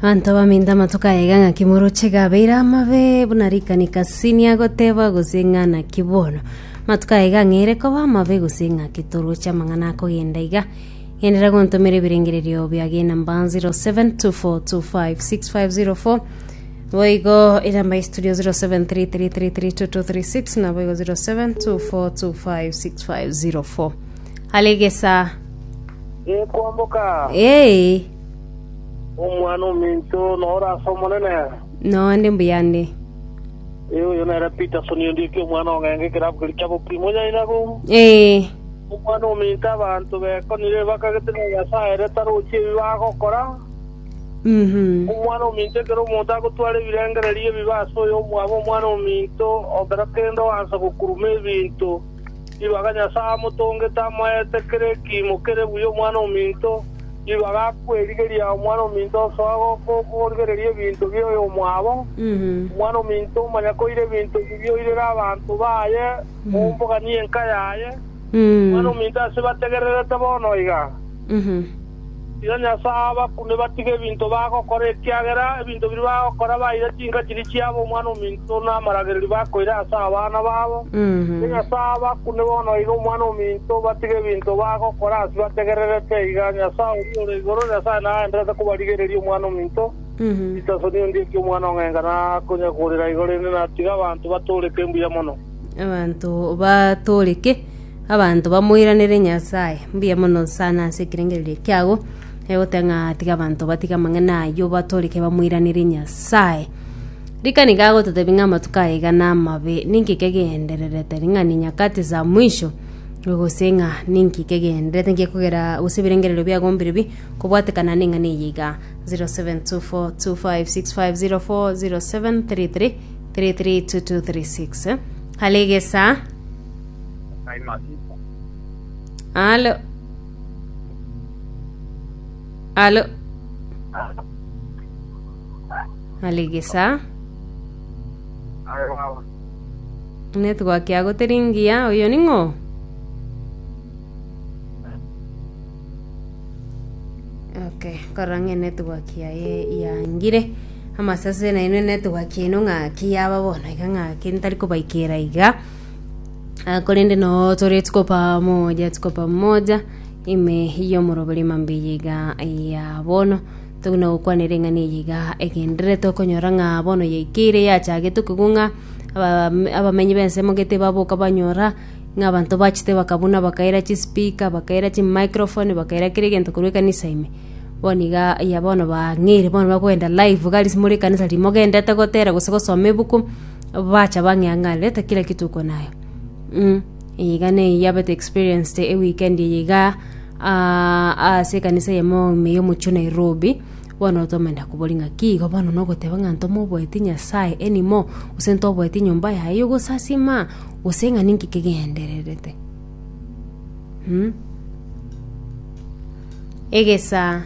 Abanto baminto amatuko aya iga ng'aki moroche iga abeire amabe buna rikani kasini agoteba gose ng'a naki bono amatuko aya iga ng'eire koba amabe gose ng'aki toroche amang'ana akogenda iga genderera gontomera ebirengererio bia gena mbanzi 0724256504 boigo eramba ya studio 0733332236 naboigo 0724256504 alegesa Gekwamboka, Ee, omwana ominto noro ase Omonene. nonde mbuyande. Ee, oyo nere Peterson Ondieki, omwana o Ng'enga, ekerabu keria kia Bokiri, monyainaga oo. Ee, Omwana ominto abanto bekonire, bakagete ng'a Nyasae ere tarochi ebi bagokora. mhm. Omwana ominto ekero omonto agotwara ebirengererio ebibe ase oyo omwabo omwana ominto, okera kende oansa gokuruma ebinto. Nigo aka Nyasae amotongete amoete kera ekiimo kere buya omwana ominto, nigo agakwerigeria omwana ominto osoa goka okorigereria ebinto bia oyomwabo, omwana ominto omanya koira ebinto ebi bioirera abanto baye ombogania enka yaye, omwana ominto ase bategererete bono iga. Rirorio nase aa abakune batige ebinto bagokora, ekiagera ebinto biria bagokora baire chinka chiria chiabo omwana-o-minto na amaragererio bakoira ase abana babo. Rirorio nase aa abakune bono aire omwana-o-minto batige ebinto bagokora ase bategererete iga, Nyasae oria ore igoro, Nyasae nagendererete kobarigereria omwana-o-minto, Ritasoni ondieki omwana ong'enga nakonyakorera igo, rende natiga abanto batooreke mbuya mono. Abanto batooreke. Abanto bamoiranere Nyasae, mbuya mono sana ase ekerengererio eke kiago, eh, goteba ng'a tiga abanto batige amang'ana ayio batoreke bamoiranere Nyasae. Rika nigo agototebi ng'a amatuko aya iga namabe, ninki kegendererete ring'ana nyakati za mwisho, gose ng'a ninki kegendererete nki ekogera gose ebirengererio biago mbirebi kobwatekana neng'ana eye iga, 0724256504 0733332236 eh, Kare egesaa. Alo. Alo. Aligisa. Network yago teri ngiya. Oyo ning'o? Okay, korora ng'e network yaye yangire. Amasase nainwe network yaino ng'aki yaba bono iga ng'aki ntari kobaikera iga. Ah, korende no tore tikopa moja tikopa moja ime yomoroberi mambe yiga ya bono toguna gokwanera eng'ana eyiga egenderere tokonyora ng'a bono yaikeire yachagete okigwa ng'a aba- abamenyi bensemo gete baboka banyora ng'a abanto bachete bakabuna bakaira chispeaker bakaira chimicrophone bakaira kera egento korwa ekanisa ime bono iga ya bono bang'eire bono bakogenda live iga ase more ekanisa riria mogendete gotera gose gosoma ebuku. bacha bang'eang'arerete kera gituko naye mm. iga neyio yabete experienced eweekend eye iga ah, ase ekanisa yemo ime yomochio nairobi bono tomenda kobori ng'aki igo bono nogoteba ng'a ntomoboeti nyasaye anymore gose ntoboeti nyomba yaye yogosasima gose ng'a ninki kegendererete mm. egesa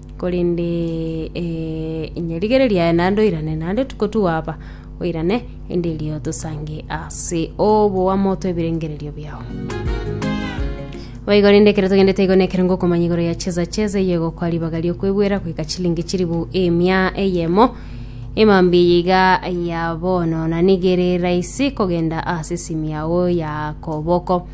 Korende inye rigere riaye naende oirane, naende tikotuwa aba, oirane, inde erio tosange ase oboamo twebirengererio biao. Boigo rende ekero togendete igo nekero ngokomanya igoro ya cheza cheza eye egokwa ribaga riokwebwera goika chilingi chiribu emia eyemo emambia eye iga ya bono na nigere rahisi kogenda ase esimi yao ya koboko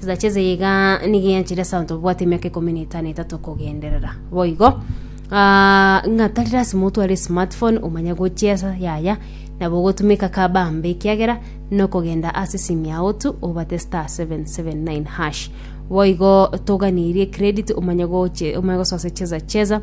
Chisacha eze iga nigo eanchire ase abanto babwate emiaka ikomi na etano etato kogenderera. Boigo, ah, ng'a tari lasima otware esmartphone omanye gochia esa yaya, nabo ogotumeka kabambe ekiagera nokogenda ase esimi yao tu obate star 779 hash. Boigo toganirie credit omanye goche, omanye gosoa ase cheza cheza,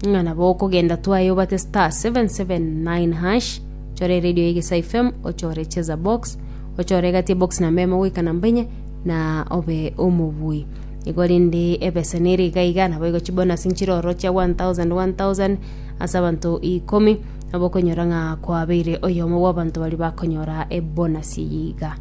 ng'a nabo okogenda twaye obate star 779 hash, chore radio ya Egesa FM, ochore cheza box, ochore egati ebox na meme goika na mbainye na obe omobui igo rende ebesa nere iga iga nabo igo chibonus nchire oro chia 1000 1000 ase abanto ikomi nabo okonyora ng'a kwabeire oyomo bw'abanto baria bakonyora ebonus eye iga.